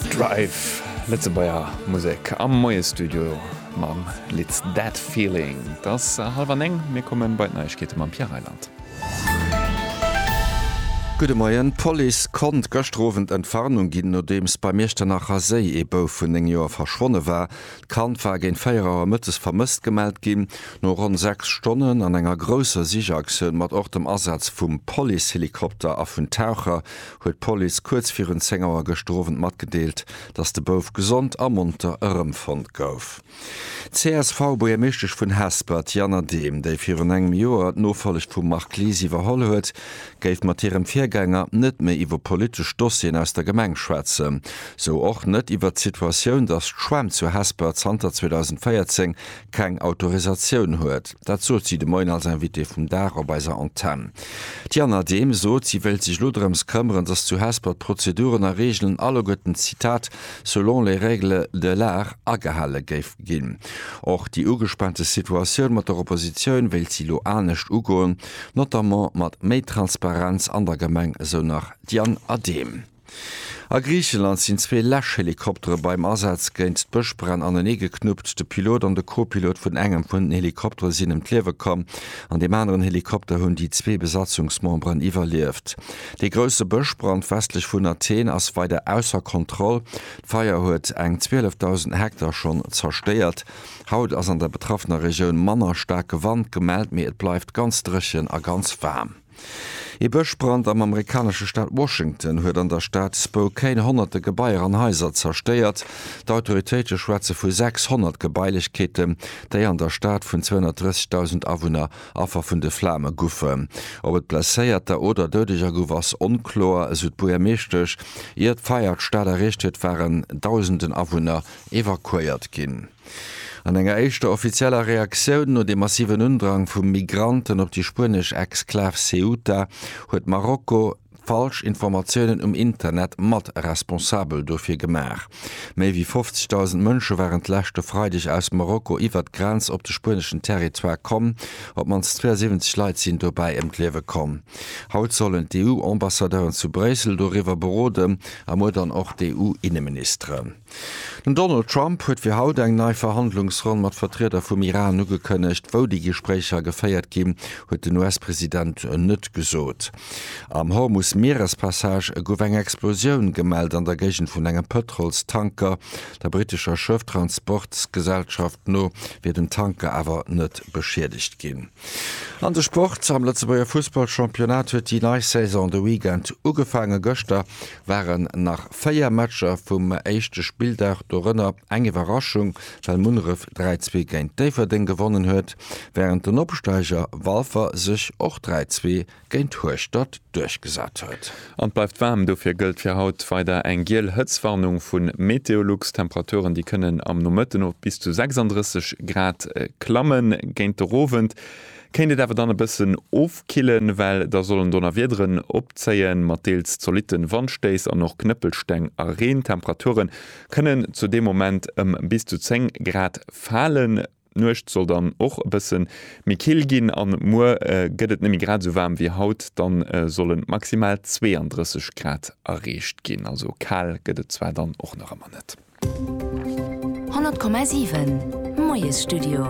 Drive, Lëtzebuerger Musek am Moiesstudio mam Lidd That Feeling. Et ass hallef an néng, mir komme bei d'Neiegkeete mam Pierre Reyland. Gudde Moien, D'Police konnt gëschter Owend Entwarnung ginn, nodeems beim Iechternacher Séi ee Bouf vun 9 Joer verschwonne war. D'Kand war géint 4 Auer mëttes vermësst gemellt ginn. No ronn 6 Stonnen an enger grousser Sichaktioun mat och dem Asaz vum Policehelikopter a vun Taucher, huet d'Police kuerz virun 10 Auer gëschter Owend matgedeelt, datt de Bouf gesond a monter erëmfonnt gouf. D'CSV-Buergermeeschtesch vun Hesper, d'Jana Dehm, déi virun engem Joer d'Nofollegt vum Marc Lies iwwerholl huet, géif mat hirem Virgänger net méi iwwer politesch Dossieren aus der Gemeng schwätzen. Sou och net iwwert d'Situatioun, datt d'Schwämm zu Hesper zanter 2014 keng Autorisatioun huet. Dat sot si de Moien als Invitée vum Dag op eiser Antenn. D'Jana Dehm sot, si wéilt sech elo drëms këmmeren, datt zu Hesper d'Prozeduren a Reegelen alleguerten, Zitat, selon les règles de l'art agehale géif ginn. Och déi ugespaante Situatioun mat der Oppositioun wéilt si elo anescht ugoen, notamment mat méi Transparenz an der Gemeng, esou nach d'Jana Dehm. A Griicheland sinn zwee Läschhelikoptere beim Asaz géint d'Bëschbränn aneneegeknuppt. De Pilot an de Co-Pilot vun engem vun den Helikoptere sinn ëm d'Liewe komm. An deem aneren Helikopter hunn déi zwee Besatzungsmemberen iwwerlieft. Dee grousse Bëschbrand westlech vun Athen ass weider ausser Kontroll. D'Feier huet eng 12.000 Hektar schonn zerstéiert. Haut ass an der betraffener Regioun manner staarke Wand gemellt, mee et bleift ganz dréchen a ganz waarm. Ee Bëschbrand am amerikanesche Staat Washington huet an der Stad Spokane honnerte Gebaier an Haiser zerstéiert. D'Autoritéite schwätze vu 600 Gebailechkeeten, déi an der Stad vun 230.000 Awunner Affer vun de Flame goufen. Ob et Blesséierter oder Doudeger gouf, ass onkloer, esou d'Buergermeeschtesch. Ier d'Feier d'Stad erreecht huet, waren Dausenden Awunner evakuéiert ginn. An enger éischter offizieller Reaktioun no dem massiven Undrang vu Migranten op déi spuenesch Exklav Ceuta huet Marokko falsch Informatiounen um Internet mat responsabel dofir gemaach. Méi wéi 50.000 Mënsche waren d'leschte Freideg aus Marokko iwwert d'Grenz op de spueneschen Territoire komm. Op d'mannst 72 Leit sinn dobäi ëm d'Liewe komm. Haut sollen d'EU-Ambassadeuren zu Bréissel doriwwer beroden a muer dann och d'EU-Inneministeren. Den Donald Trump huet fir haut eng nei Verhandlungsronn mat Vertrieder vum Iran ugekënnegt. Wou déi Gespréicher geféiert ginn, huet den US-President net gesot. Am Hormus-Mierespassage gouf eng Explosioun gemellt an der Géigend vun engem Pëtrolstanker. Der brittescher Schëfftransportsgesellschaft no wier den Tanker awer net beschiedegt ginn. An de Sport, Am Lëtzebuerger Fussballchampionnat huet déi nei Saison de Weekend ugefaangen. Gëschter waren nach 4 Matcher vum éischte Spilldag, dorënner eng Iwwerraschung, well Munneref 3, 2 géint Déifferdeng gewonnen huet, wärend den Opsteiger Walfer sech och 3, 2 géint Hueschtert duerchgesat huet. An et bleift waarm, dofir gëllt fir haut weider eng giel Hëtztwarnung vu Meteolux. D'Temperaturen, déi kënnen am Nomëtten of bis zu 36 Grad klammen. Géint de rowend Kéint et awer dann e bëssen ofkillen, well da sollen Donnerwiederen opzéien, mat deels zolitte Wandstéiss an och Knëppelsteng a Reen. D'Temperature kënnen zu deem Moment ëm bis zu 10 Grad falen. D'Nuecht soll dann och e bësse méi kill ginn an muer gëtt et net méi grad esou waarm wéi haut, da sollen maximal 32 Grad erreecht ginn. Also kal gëtt et zwar dann och nach ëmmer net. 100,7 Moiesstudio.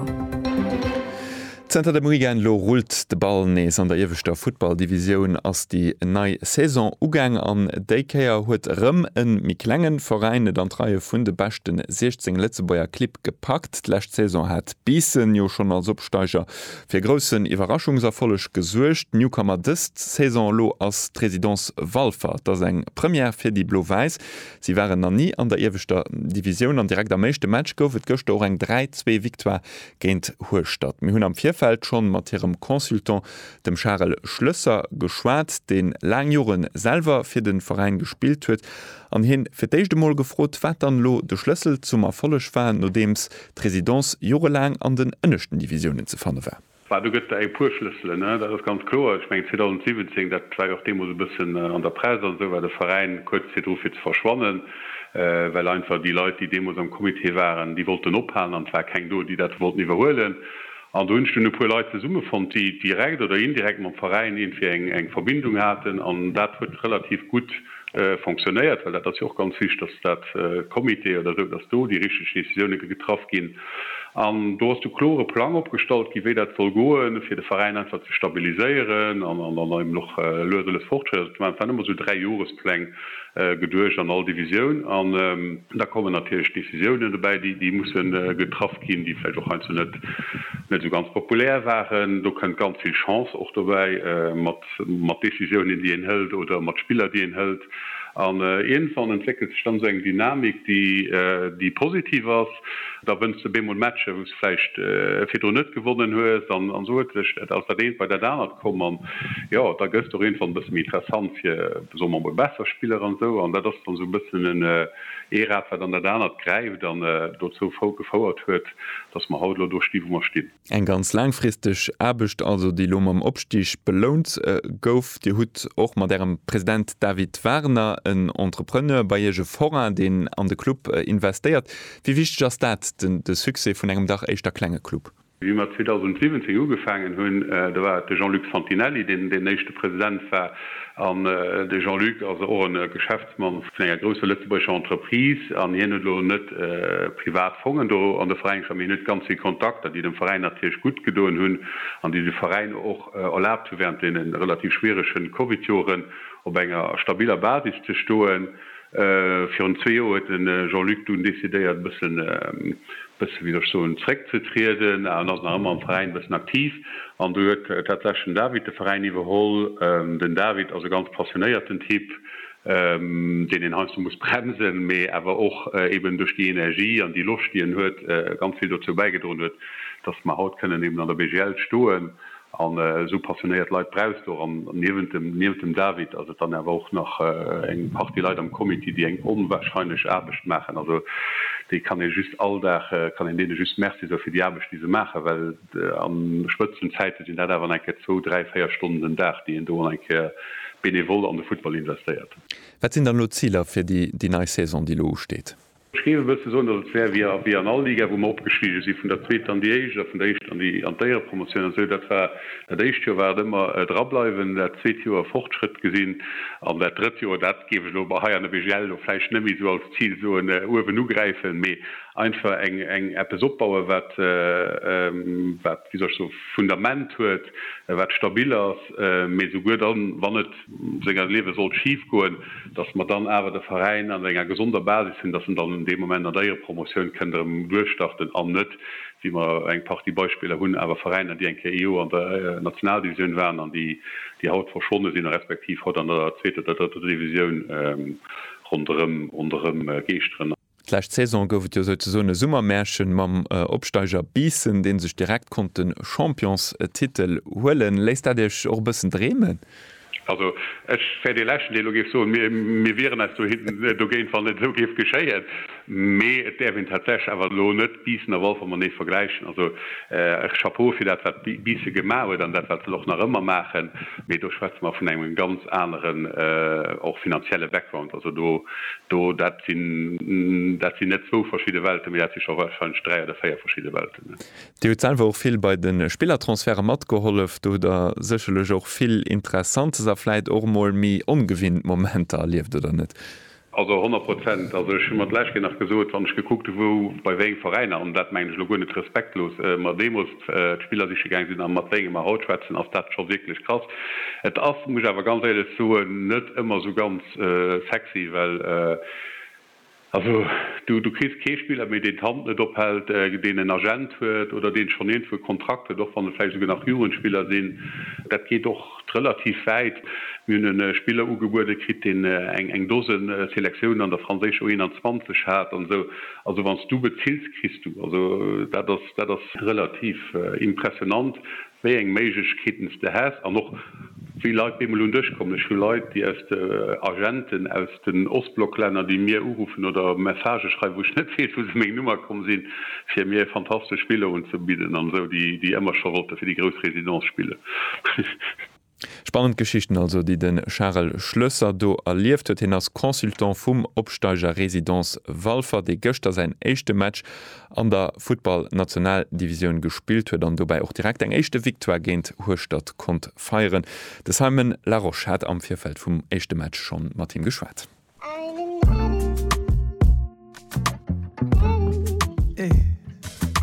Zënter dem Weekend elo rullt de Ball nees. An der ieweschter Futtballdivisioun ass déi nei Saison ugaang an déi Kéier huet erëm e méi klenge Veräin et an d'Reie vun de beschte 16 Lëtzebuerger Clibb gepackt. D'lescht Saison hat Biissen jo schonn als Opsteiger fir e groussen Iwwerraschungserfolleg gesuergt. Newcomer dës Saison elo ass d'Résidence Walfer. Et ass eng Première fir déi Blo-Wäiss, Si waren nach ni an der ieweschter Divisioun an direkt am éischte Match gouf et gëschter och eng 3, zwee Victoire géint Hueschtert. Mir hunn am Virfeld schonn mat hirem Consultant, dem Charel Schlësser, geschwat, deen laang Joren selwer fir den Veräin gespillt huet an hien fir d'éischt emol gefrot, wat dann elo de Schlëssel zum Erfolleg war, nodeems d'Résidence jorelaang an den ënneschten Divisiounen ze fanne war. Bah, do gëtt et eng puer Schlësselen, dat ass ganz kloer. Ech mengen 2017, dat war jo och deemools e bëssen an der Press an esou, war de Veräin kuerz virdru fir ze verschwannen, well einfach déi Leit, déi deemools am Comité waren, déi wollten ophalen an et war keng do, déi dat wollten iwwerhuelen. An do hunn ech dunn e puer Leit zesummefonnt, déi direkt oder indirekt mam Veräin iergendwéi eng Verbindung haten an dat huet relativ gutt fonctionnéiert, well dat ass jo och ganz wichtig, dass dat Comité oder esou, dass do déi richtig Décisionen ge getraff ginn. An do ass de klore Plang opgestallt ginn, wéi dat soll goen, fir de Veräin einfach ze stabiliséieren an an an eben och lues a lues Fortschritt ze maachen. Et waren ëmmer esou Dräijohrespläng geduecht an all Divisioun. An da kommen natierlech Décisionen dobäi, déi déi musse getraff ginn, déi vläicht och heiansdo net net esou ganz populär waren. Do kënnt ganz vill Chance och dobäi mat. mat Décisiounen, déi een hëlt oder mat Spiller, déi een hëlt an iergendwann entwéckelt sech dann esou eng Dynamik, déi positiv ass. Da wënns de bemol Matcher, wou s de vläicht virdrun net gewonnen hues an esou huet sech dat aus dat eent bei dat anert komm an jo, da gëss de och iergendwann e bësse méi interessant fir, soe mer emol, besser Spiller an esou an dat ass dann esou e bëssen en ee Rad, wat an dat anert gräift an dozou gefouert huet, dass mer haut elo do stinn, wou mer stinn. Eng ganz laangfristeg Aarbecht also, déi elo mam Opstig belount gouf. Dir hutt och mat Ärem President David Warner en Entrepreneur bei Iech, e Forain, deen an de Club investéiert. Wéi wichteg ass dat, de Succès vun engem dach éischter klenge Club? Wéi mer 2017 ugefaangen hunn, da war et de Jean-Luc Santinelli, deen deen éischte President war. An de Jean-Luc ass och e Geschäftsmann. D'Mann vun enger grousser lëtzebuergescher Entreprise an hien huet elo net privat Fongen do an de Veräin gesat, mee hien huet ganz vill Kontakter, déi dem Veräin natierlech gutt gedoen hunn an déi de Veräin och erlaabt hu während deene relativ schwierege Covid-Joren op enger stabiler Basis ze stoen. Virun zwee Joer huet de Jean-Luc dunn decidéiert e bëssen, bëssen, wéi soll ech soen, zréckzetrieden, awer en ass nach ëmmer am Veräin e bëssen aktiv an do huet tatsächlech den David de Veräin iwwerholl. Den David ass e ganz passionéierten Typ. deen een heiansdo muss bremsen, mee awer och eben duerch déi Energie an déi Loscht, déi en huet, ganz vill dozou bäigedroen huet, dass mer haut kënnen eben an der BGL stoen an esou passionéiert Leit brauchst de och. An niewent dem, niewent dem David ass et dann awer och nach eng Partie Leit am Comité, déi eng onwahrscheinlech Aarbecht maachen. Also déi kann ee just all Dag, kann een deene just Merci soe fir déi Aarbecht, déi se maachen, well, An Spëtzenzäite sinn dat awer nach eng Kéier zwou, dräi, véier Stonnen den Dag, déi een do nach eng Kéier benevol an de Futtball investéiert. Wat sinn dann elo d'Ziler fir déi nei Saison, déi elo usteet? Ech géif e bësse soen, datt et wär wéi an all Liga, wou mer opgestigen sinn, vun der Zweeter an déi Éischt a vun der Éischter an d'Éierepromotioun an esou. Dat war, dat éischt Joer war et ëmmer drableiwen, dat zweet Joer Fortschrëtt gesinn an dat drëtt Joer, dat géif ech elo hei an der BGL elo vläicht net méi esou als Zil soen, uewen ugräifen, mee einfach eng eng eppes opbauen wat wat wéi soll ech soen Fundament huet wat stabil ass, mee souguer dann wann et senger Liewe sollt schif goen, datt mer dann awer de Veräin an enger gesonder Basis hunn, datt en dann dee Moment an der Éierempromotioun kënnt erëm duerchstarten an net wéi mer eng Partie Beispiller hunn awer Veräiner déi eng Kéier ee Joer an der Nationaldivisioun waren an déi déi haut verschwonne sinn respektiv haut an der zweeter oder drëtter Divisioun ronderëm ronderëm geeschteren. D'lescht Saison gouf et jo souzesoen e Summermärchen mam Opsteiger Biissen, dee sech direkt konnt de Championstitel huelen. Léisst dat Iech och e bëssen dreemen? Also ech wär dee Leschten, deen elo géif soen, mir wieren eis dogéint, wann et esou géif geschéien. Mee et däerf een tatsächlech awer elo net Biissen a Walfer matenee vergläichen. Also Chapeau fir dat, wat Biisse gemaach huet an dat, wat se och nach ëmmer maachen. Mee do schwätze mer vun engem ganz aneren, och finanzielle Background. Also do, do, dat sinn, dat sinn net zwou verschidde Welten, mee dat si scho warscheinlech dräi oder véier verschidde Welten. Dir hutt selwer och vill bei de Spillertransferte matgehollef. Do hutt Der sécherlech och vill Interessantes a vläit och emol méi ongewinnt Momenter erlieft, oder net? Also honnert Prozent. Also ech hu mer d'lescht Kéier nach gesot, wann ech gekuckt hu wou, bei wéi eng Veräiner, an dat mengen ech elo guer net respektlos, mer deemools d'Spiller siche gaange sinn a mat wéinge mer haut schwätzen, ass dat scho wierklech krass. Et ass, muss ech awer ganz éierlech soen, net ëmmer esou ganz sexy, well also du kriss kee Spiller méi, deen d'Hand net ophält, deen en Agent huet oder deen schonn iergendwou e Kontrakt huet, och wann et vläicht esouguer nach Jugendspiller sinn. Dat geet och. Relativ wäit. Mir hunn e Spiller ugebuede kritt, deen eng Dosen Selektiounen an der franséischer U21 hat an esou. Also wann s du bezills, kriss du. Also dat ass, dat ass. Relativ impressionant, wéi eng Méiglechkeeten s de häss an och wéi Leit beemol un dech kommen. Ech hu Leit, déi aus de, Agenten aus. den Ostblocklänner, déi mir uruffen oder Messagë schreiwen, wou ech net weess, wou se meng Nummer komm sinn, fir mir e fantastesch Spill unzebidden an esou, déi ëmmer scho wollte fir déi grouss Résidence spillen. Spannend Geschichten also, déi de Charel Schlösser do erlieft huet. Hien ass Consultant vum Opsteiger Résidence Walfer, dee gëschter säin éischte Match an der Futtball-Nationaldivisioun gespillt huet an dobäi och direkt eng éischte Victoire géint Hueschtert konnt feieren. De Simon Larosche hat am Virfeld vum éischte Match schonn mat him geschwat.